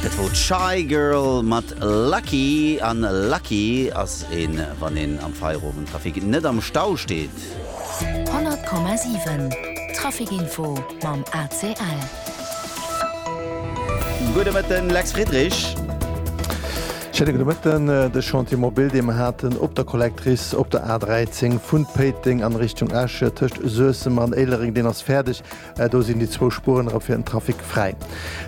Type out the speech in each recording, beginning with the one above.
Dat wor d'Shygirl mat Lucky. An lucky ass een, wann een am Feierowend Trafic net am Stau steet. 100,7 Trafic Info mam ACL. Gudde Mëtten, Lex Friedrich. Schéine gudde Mëtten. De Chantier mobil, dee mer haten op der Collectrice op der A 13 vun Péiteng an Richtung Esch, tëscht Suessem an Éilereng, deen ass fäerdeg. Do sinn déi zwou Spueren erëm fir den Trafic fräi.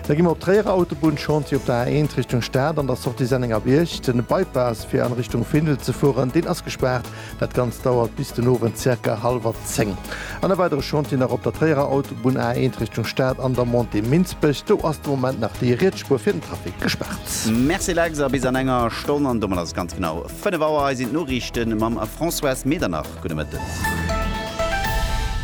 Da gi mer op d'Tréierer Autobunn, Chantier op der A1 Richtung Stad an der Sortie Sennengerbierg. Den Bypass fir an Richtung Findel ze fueren, deen ass gespaart. Dat Ganzt dauert bis den Owend zirka hallwer 10. An e weidere Chantier nach op der Tréierer Autobunn, A1 Richtung Stad an der Montée Minsbech. Do ass de Moment nach déi riets Spuer fir den Trafic gespaart. Merci Lex, a bis an enger Stonn, an domat ass et ganz genau 5 Auer. Hei sinn d'Noriichte mam Françoise Medernach. Gudde Mëtten.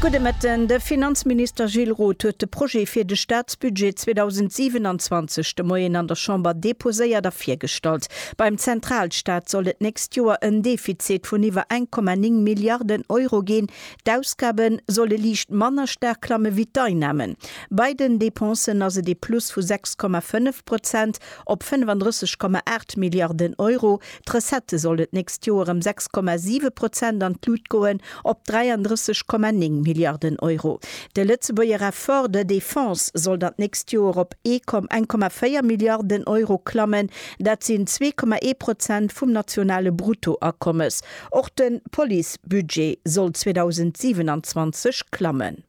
Gudde Mëtten. De Finanzminister Gilles Roth huet de Projet fir de Staatsbudget 2027 de Moien an der Chamber deposéiert a virgestallt. Beim Zentralstaat soll et nächst Joer en Defizit vun iwwer 1,9 Milliarden Euro ginn. D'Ausgabe solle liicht manner staark klamme wéi d'Einnamen. Bei den Dépensen ass et ee Plus vu 6,5 Prozent op 35,8 Milliarden Euro. D'Recettë solle d'nächst Joer ëm 6,7 Prozent an d'Lut goen, op 33,9 Milliarden Euro. De Lëtzebuerger Effort de défense sollt an d'nächst Joer op 1,4 Milliarden Euro klammen, dat sinn 2,1 Prozent vum nationale Bruttoakommes. Och de Policebudget soll 2027 klammen.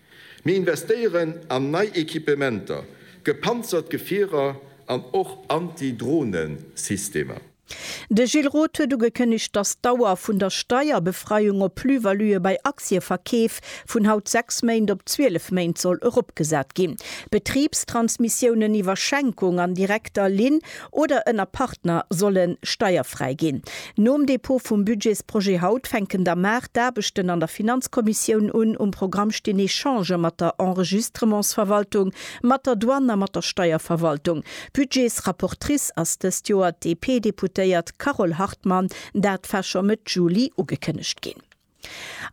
Mir investéieren an nei Equipementer, gepanzert Gefierer an och Anti-Drohnen-Systemer. De Gilles Roth huet ugekënnegt, datt d'Dauer vun der Steierbefreiung op Plus-valuë bei Aktieverkeef vun haut 6 Méint op 12 Méint soll eropgesat ginn. Betribstransmissiounen iwwer Schenkung an direkter Linn oder ënner Partner solle steierfräi ginn. Nom Dépôt vum Budgetsprojet haut fänken da mar d'Aarbechten an der Finanzkommissioun un. Um Programm stinn Echangë mat der Enregistrementsverwaltung, mat der Douane a mat der Steierverwaltung. Budgetsrapportrice ass dëst Joer d'DP-Deputéiert Carole Hartmann. Dat war scho Mëtt Juli ugekënnegt ginn.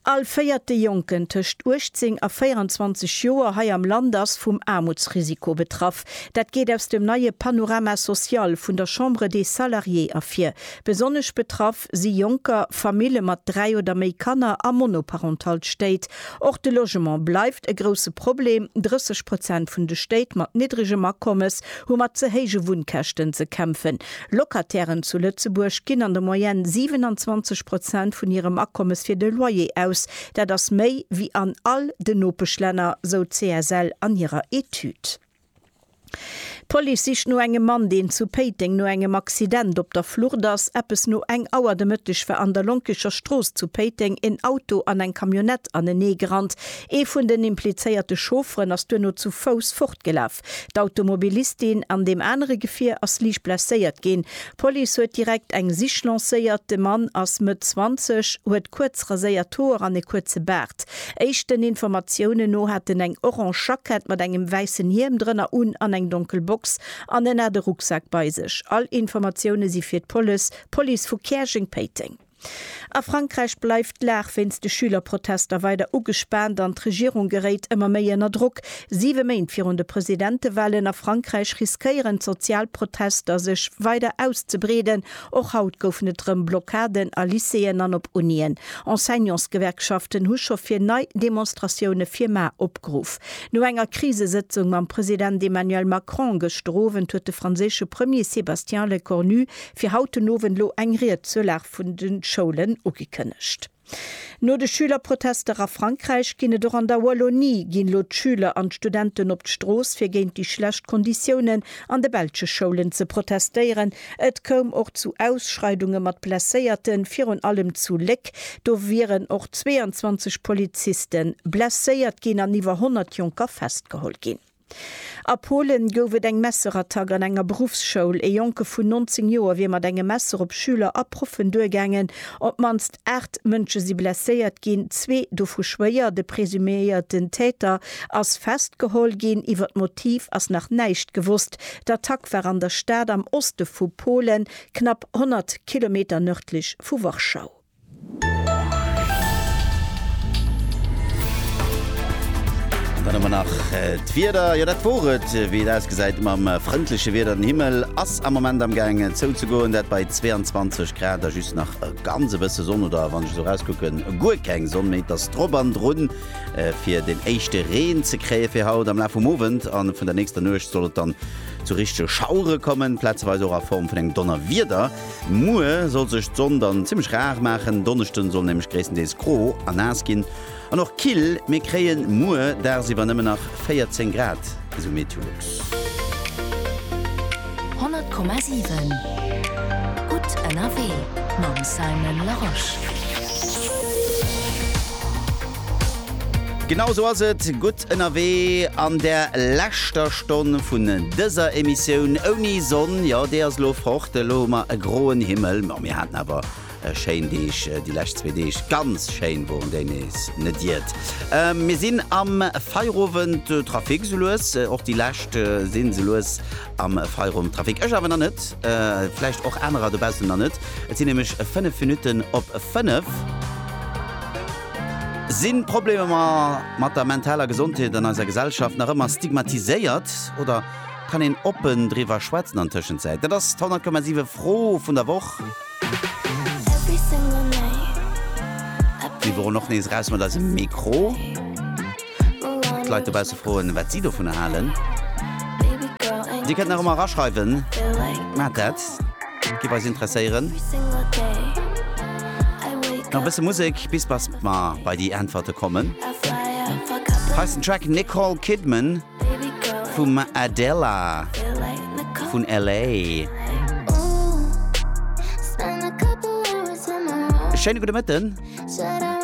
All véierte Jonken tëscht 18 a 24 Joer hei am Land ass vum Aarmutsrisiko betraff. Dat geet aus dem neie Panorama social vun der Chambre des Salariés ervir. Besonnesch betraff si Jonker, Famille mat dräi oder méi Kanner a monoparental Stéit. Och de Logement bleift e grousse Problem, 30 Prozent vun de Stéit mat niddregem Akommes hu mat ze héije Wunnkäschten ze kämpfen. Locatairen zu Lëtzebuerg ginn an der Moyenne 27 Prozent vun hirem Akommes fir de Loyer aus. Dat ass méi wéi an all den Nopeschlänner, sou d'CSL an hirer Etüd. D'Police sicht no engem Mann, deen zu Péiteng no engem Accident op der Flucht ass. Eppes no eng Auer de Mëtteg war an der Lonkecher Strooss zu Péiteng en Auto an eng Camionnette aneneegerannt. Ee vun den implizéierte Chaufferen ass duerno zu Fouss fortgelaf. gebrach. D'Automobilistin an deem anere Gefier ass liicht blesséiert ginn. D'Police huet direkt eng Sich lancéiert. De Mann ass Mëtt 20, huet kuerz raséiert Hoer an e kuerze Baart. Éischten Informatiounen no hat en eng orange Jackett mat engem wäissen Hiem drënner un an eng donkel Box an en hat e Rucksak bei sech. All Informatioune si fir d'Polis, Police vu Käerjeng-Péiteng. A Frankräich bleift d'Lag wéinst de Schülerprotester weider ugespaant an d'Regierung geréit ëmmer méi ënner Drock. Siwe Méint virun de Presidentewahlen a Frankräich riskéieren d'sozial Protester sech weider auszebreeden. Och haut goufen et rëm Blockaden a Lycéeën an op Unien. Enseignantsgewerkschaften hu scho fir nei Demonstratioune fir mar opgeruff. No enger Krisesëtzung mam President Emmanuel Macron gëschter Owend huet de franséische Premier Sébastien Lecornu Fir haut den Owend lo eng Ried zur Lag vun den Schoulen ugekënnegt. No de Schülerprotester a Frankräich ginn et och an der Wallonie, ginn lo d'Schüler an d'Studenten op d'Strooss fir géint déi schlecht Konditiounen an de belsche Schoulen ze protestéieren. Et koum och zu Ausschreidunge mat Blesséierten, virun allem zu Léck, do wieren och 22 Polizisten blesséiert ginn an iwwer 100 Jonker festgeholl ginn. A Polen gouf et eng Messerattack an enger Beruffsschoul. Ee Jonke vun 19 Joer wier mat engem Messer op Schüler a Proffen duergaangen. Op d'mannst 8 Mënsche si blesséiert ginn, zwee dovu schwéier. De presuméierten Täter ass festgeholl ginn. Iwwer d'Motiv ass nach näischt gewosst. D'Attack war an der Stad am Oste vu Polen, knapp 100 Kilometer nërdlech vu Warschau. An dann hu mer nach d'Wieder. Jo, dat wor et, wéi et ausgesäit mam frëndleche Wieder. Den Himmel ass am Moment am Gaang zouzegoen, dat bei 22 Grad a just nach e ganz e bësse Sonn oder wann ech esou erauskucken, guer keng Sonn méi. Et ass drop an drun, fir den éischte Reen ze kréie fir haut. Am Laf vum Owend a vun der nächster Nuecht soll et dann zu richtege Schauere kommen, plazeweis och a Form vun engem Donnerwieder. Muer soll sech d'Sonn dann zimmlech rar maachen, Donneschden soll nämlech gréisstendeels gro a naass ginn an och kill. Mir kréien muer dagsiwwer nëmmen nach 14 Grad, esou Meteolux. 100,7 gutt ënnerwee mam Simon Larosche. Genau esou ass et. Gutt. Ënnerwee an der leschter Stonn vun dëser Emissioun ouni Sonn, jo déi ass elo fort, elo hu mer e groen Himmel, ma mir haten awer schéin Deeg déi lescht zwee Deeg, ganz schéin woren déi nees net iert mir sinn am Feierowend Trafic sou lues, och déi lescht sinn sou lues am Feierowend Trafic, ech awer nach net, vläicht och anerer dobaussen nach net, et sinn nämlech 5 Minutten op 5. Sinn d'Problemer mat der mentaler Gesondheet an eiser Gesellschaft nach ëmmer stigmatiséiert oder kann een oppen driwwer schwätzen an Tëschenzäit? Dat ass d'Honnertkommasiwwe Fro vun der Woch. Mir woren och nees eraus mat eisem Mikro. D'Leit dobausse froen, wat si dovunner halen. Dir kënnt nach ëmmer eraschreiwen, maacht dat, giff eis interesséieren. Nach e bësse Musek, bis bas mer bei déi Äntwerte kommen. Hei ass den Track Nicole Kidman vum Adela vun LA. Schéine gudde Mëtten.